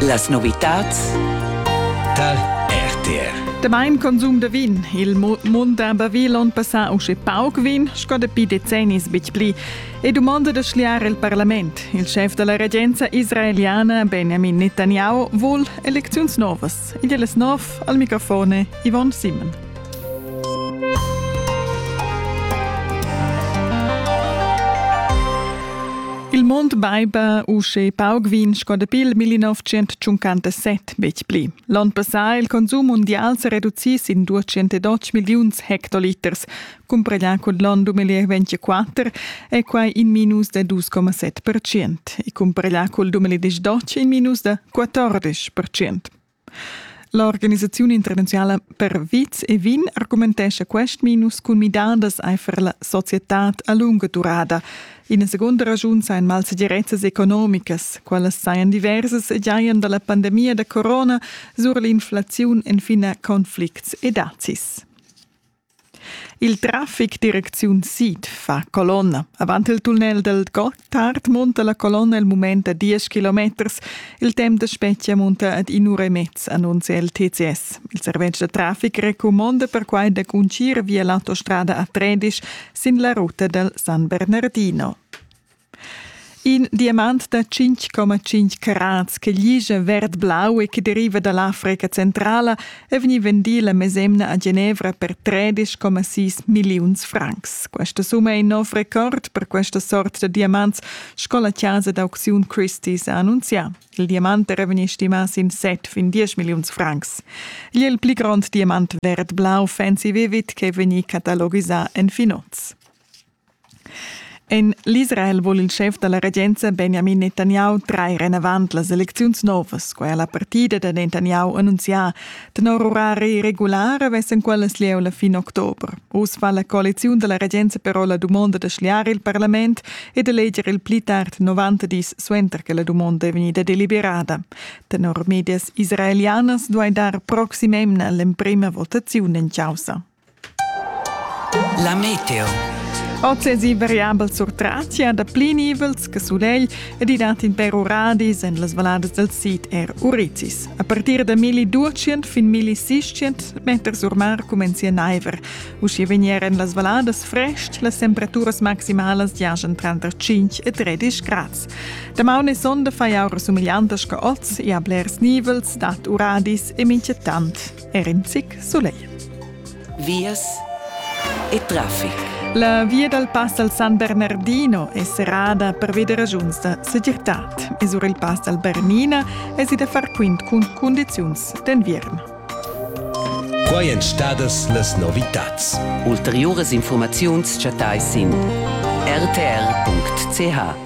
Las novitads tal RTR. Demain consum da vin. Il mund da Bavilon passà usche pauc vin, sco dapi decennis betg pli. E domanda da schliar il parlament. Il chef della regenza israeliana Benjamin Netanyahu vul elecziuns novas. podcast. Igl es nov al microfone Yvonne Simon. Il mond baiba usche pauc vin sco dapi il 1957 betg pli. L'on passà il consum mundial s'è reducì sin 212 milliuns hectoliters, Cumpreglià cun l'onn 2024 è quai in minus da 2,7 percent e cumpreglià cul 2012 in minus da 14 percent. L'organisaziun internaziala per viz e vin argumentescha quest minus cun midadas aifer la societad a lunga durada. Ina segunda raschun sajan malsegirezzas economicas, qualas sajan diversas e giajan da la pandemia da corona sur l'inflaziun en fin a conflicts e dazis. Il traffic direcziun sid fa colonna. Avant il tunnel dal Gotthard munta la colonna il mument a 10 kilometers. Il temp da spetga munta ad in'ura e mezza, annuncia il TCS. Il servetsch da traffic recumonda perquai da cuncir via l'autostrada A13 sin la ruta dal San Bernardino. In diamant da 5,5 carats che ligia verd-blau e che deriva da l'Africa centrala è vegnì vendì la mesemna a Genevra per 13,6 milliuns francs. Questa summa è in nov record per questa sort da diamants, sco la chasa d'aucziun Christie's ha annunzià. Il diamant era vegnì stimà sin set fin 10 milliuns francs. Igl è il pli grond diamant verd-blau fancy vivid che è vegnì catalogisà en Finoz. En l'Israel vul il schef da la regenza Benjamin Netanyahu trair enavant las elecziuns novas, quai ha la partida da Netanyahu annunzià. Tenor orari regular vessen quellas lieu la fin october. Uss fa la coaliziun da la regenza però la dumonda da schliar il parlament e d'eleger il pli tard 90 dis suenter che la dumonda è vegnida deliberada. Tenor medias israelianas duai dar proxim emna l'emprima votaziun en causa. La meteo. Oz esi variabel sur Tracia da pli nivels che sulegl ed i dat in per uradis en las valladas del sid er Urizis. A partir da 1200 fin 1600 meter sur mar cumenzia naiver. Uschia vegnieren las valladas frest, las temperaturas maximalas giajan tranter 5 e 13 grads. Damaun e sonda fai aura sumigliantas che oz e a blers nivels dat uradis e mincha tant Er in zic sulegl. Vias e traffic. La via dal pass al San Bernardino è serrada pervi da ragiuns da segirtad. E sur il pass dal Bernina èsi da far quint cun cundiziuns d'enviern. Quai èn stadas las novitads. Ulteriuras informaziuns chattais sin rtr.ch.